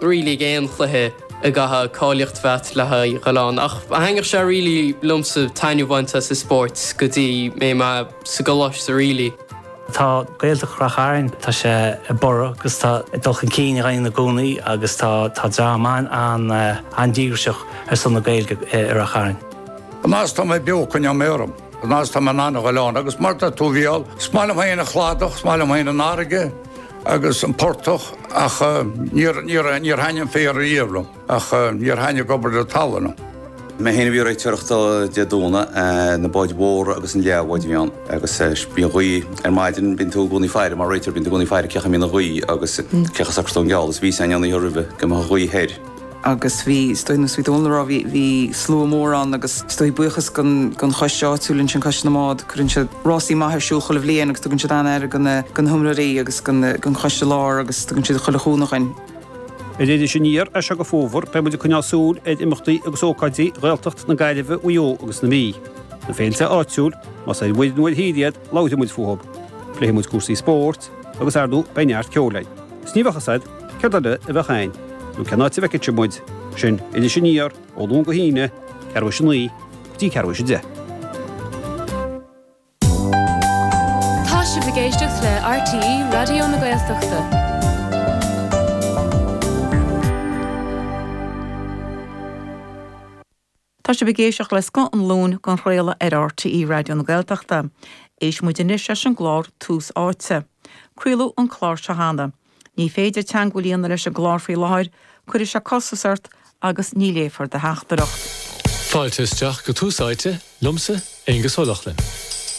really ag aon chluiche go gcaithfeadh cáilíocht a bheith agat le haghaidh a ghabháil ann ach thaithnigh sé really liomsa taitneamh a bhaint as an spórt go dtí mé mé sa gcoláiste really. Tá Gaeltacht Rath Chairn, tá sé ag borradh agus tá dul chun cinn á dhéanamh ann i gcónaí agus tá tá dream an-díograiseach ar son na Gaeilge i Rath Chairn. An fhad is tá mé beo coinneoidh mé orm. An fhad is tá mé in ann a ghabháil ann agus mar tá tú bhuel, is maith liom féin an cladach, is maith liom féin an fharraige. agus an portach ach níor thaithnigh an féar riamh liom ach níor thaithnigh obair na talúna. Mé féin a bhí ag réiteoireacht Dé Domhnaigh, na báid mhóra agus na leathbháid a bhí ann agus bhí an ghaoth ar maidin, bíonn tú i gcónaí ag faire, mar réiteoir, bíonn tú i gcónaí ag faire cén chaoi a mbíonn an ghaoth agus cén chaoi a socróidh tú an geall agus bhí sé ann an oíche roimhe go mbeadh an ghaoth thoir. agus bhí is dóigh ar nós a bhí Dónal a rá bhí bhí slua mór ann agus is dóigh buíochas gon gon choiste áitiúil ansin coiste na mbád cuireann siad rásaí maith ar siúl chuile bhliain agus tugann siad an-aire go na go na hiomróirí agus go na gon choiste lár agus tugann siad chuile chúnamh dhuinn. Ar Iris Aniar as seo go fómhar beidh muid ag coinneáil súil ar imeachtaí agus ócáidí Ghaeltacht na Gaillimhe Mhaigh Eo agus na Mí. Na féilte áitiúil más ar mhuir nó ar thír iad labhróidh muid fúthu. Pléifidh muid cúrsaí spóirt agus ar ndóigh beidh neart ceoil againn. Is ní bheadh a fhios agat Céard eile a bheadh ann? Nó cén áit a bhfeicfí muid? Sin Iris Aniar ó Luan go hAoine, ceathrú tar éis a naoi go dtí ceathrú tar éis a deich. Tá sibh ag éisteacht le RTÉ Raidió na Gaeltachta. Tá sibh ag éisteacht le Scoth an Luain dhá chraoladh ar RTÉ Raidió na Gaeltachta. Éistfidh muid anois leis an gclár Tús Áite. Craoladh an clár seo cheana. Ní féidir teagmháil a dhéanamh leis an gclár faoi láthair, cuirfidh sé costas ort agus ní léifear do theachtaireacht. Fáilte isteach go Tús Áite, liomsa, Aonghus Ó Lochlainn.